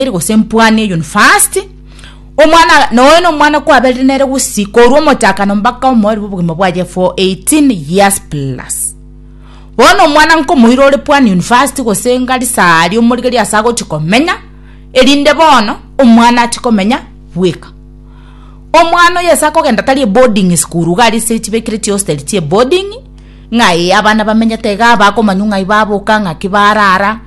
eri gose mpwani eyo university omwana noyo na omwana kwaberire nere gusi korwa omochakano mpaka omoeri bobogima bwaye for 18 years plus bono omwana nkomoira ore pwani university gose ngari sari omorigeri ase agochi komenya erinde bono omwana achi komenya bweka omwana oyo ase akogenda tari eboarding school iga arise chibekire chihosteri chie boarding ng'aye abana bamenyete iga bakomanyu ng'ai baboka ng'aki barara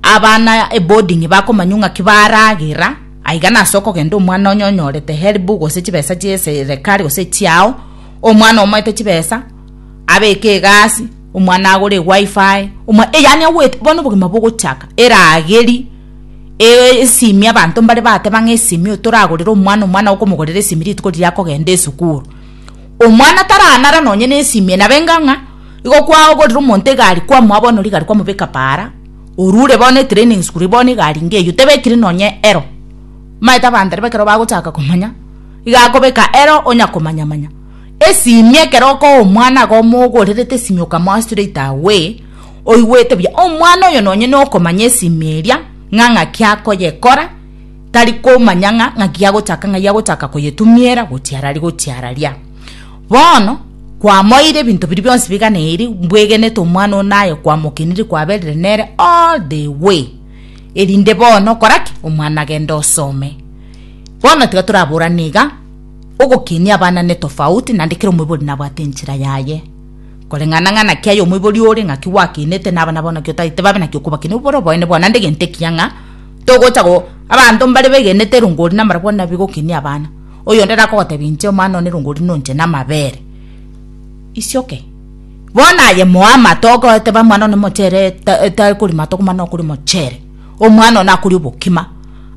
Abana eboding'i bakomanywa ng'aki baragera, aiga nase okogenda omwana onye onyorete helibu gose chibesa chi'eserekari gose echiao, omwana omoete chibesa, abeke egasi, omwana agore eWi-Fi, omwa eh yaani agoet bono obogima bogochaka, erageri, eh esimi abanto mbare bateba ng'a esimi otoragorere omwana, omwana okomogorera esimi rituko riria akogenda esukuru. Omwana taranare nonye na esimi enabe enga ng'a igo kwagorire omonto egari kwamoa bono rigari kwamobeka para, orure bono etraining school bono egari inga eyio tebekiri nonye ero maete abanto ribe ekero bagochaka komanya iga akobeka ero onya komanya manya esimi ekero okoa omwana iga omogorerete esimi okamoa straight away oigwete buya omwana oyo nonye nokomanya esimi eria ng'a ng'aki akoyekora tari komanya ng'a ng'aki agochaka ng'ai agochaka koyetumiera gochia ara gochia araria. Bono kwamoeire ebinto biria bionsi bigana eeri mbwegenete omwana one naye kwamokenire kwaberire nere all the way erinde bono okora ki omwana agende osome bono tiga toraborane iga ogokenia abana ne tofauti naende kera omoibori nabwate enchera yaye koreng'ana ng'a naki aye omoibori ore ng'aki gwakenete na abana bao naki otagete babe naki okobakenia obwo bore oboene bwao naende egento ekiya ng'a togocha go abanto mbare begenete erongori nabarabwo nabi gokenia abana. Oyonde nakogotebia inche, Omwana one rongori nonche namabere, isioke. Bono aye moe amato ogoteba omwana one mochere tari kori mato komana nokori mochere. Omwana one akori obokima.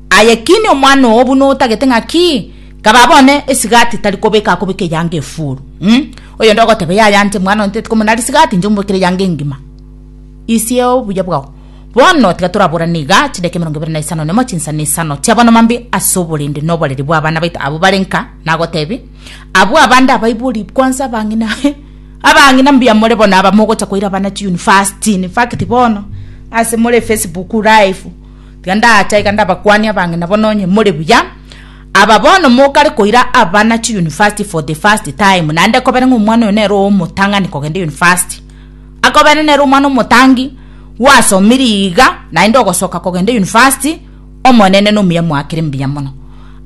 Aye kini omwana oo buna otagete ng'a ki? Kaba bone esigati tari kobeka akobeka eyanga efuru. Umm. Oyonde ogoteba yaya inche omwana one teti komona risigati inche omobekere eyanga engima. Isia obuya bwao. Bono tiga toraborane iga, chidaka emerongo ebere na isano nemo chinsa na isano chi'abana mambia ase oborende na oboreri bw'abana baito abwo bare nka, nagotebia, Abwo abande abaibori kwansa abang'ina, abang'ina mbuya more bono aba mogocha koira abana chiunifasti, in fact bono ase more Facebook live, tiga ndacha iga ndabakwanie abang'ina bono onye more buya, aba bono mokare koira abana chiunifasti for the first time, naende kobere ng'a omwana oyo nere omotang'ani kogenda unifasti. Akobera nere omwana omotangi, gwasomire iga naende ogosoka kogenda university, Omonene nomuya moakere mbuya mono.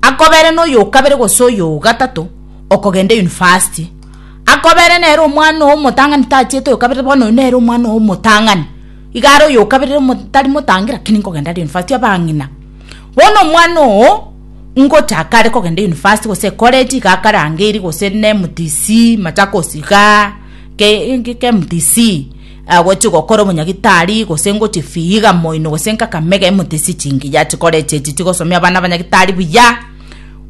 Akobere noyo okabere gose oyo ogatato okogenda university. Akobere nere omwana oyo omotang'ani tachiete oyo kabere bono oyo nere omwana oyo omotang'ani. Igare oyo okabere omo tari motangi lakini nkogenda are university abang'ina. Bono omwana oyo ngochaka are kogenda university gose ecollege iga akarangeiri gose ne MTC, Machakos igaa. KMTC, agochie gokora obonyagitari gose ngochie fiiga moino gose nkaka mega emotisi chingiya chikore echi echi chigosomia abana abanyagitari buya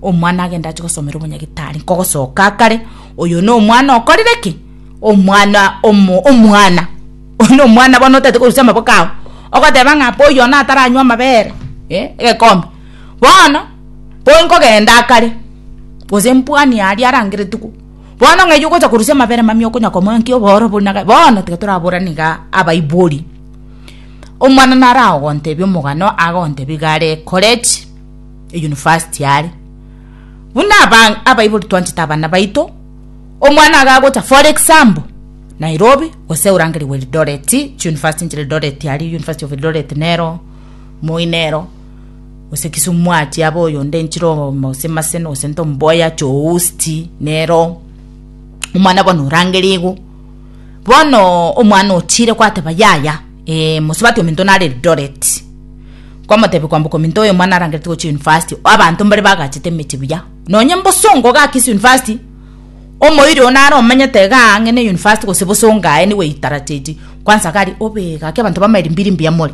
omwana agende achie gosomera obonyagitari nkogosoka akare oyo no omwana okorire ki omwana omo omwana oyo no omwana bono otagete korusia amaboko ao ogoteba ng'a bo oyo one ataranywa amabere eh egekombe bono bo nkogenda akare gose mbwani aria arange rituko. Bono ng'a eyio ogocha korusia amabera amamya okonya komoa nki oborobori na ga bono tiga toraborane igaa abaibori. Omwana naragontebie omogano agontebie iga are college university are. Buna abang abaibori twanchete abana baito omwana iga agocha for example Nairobi gose orangereiwe Eldoret chi university nchire Eldoret aria university of Eldoret nero moi nero. gose kisumu mwachia abe oyonde nchire omosemase gose ntomboya choosti nero omwana bono orangeria igo bono omwana ochire kwateba yaya eh, mosubati ominto nare eldoret kwamotebi kwamboka ominto oyo omwana arangerete gochia university abanto mbare bagachete emechi buya nonye mbosongo gaki ase university omoiri oo nare omanyete iga ang'e ne university gose bosongo aye nigo eitarachechi kwansa gari obe gaki abanto bamairimbi rimbuya more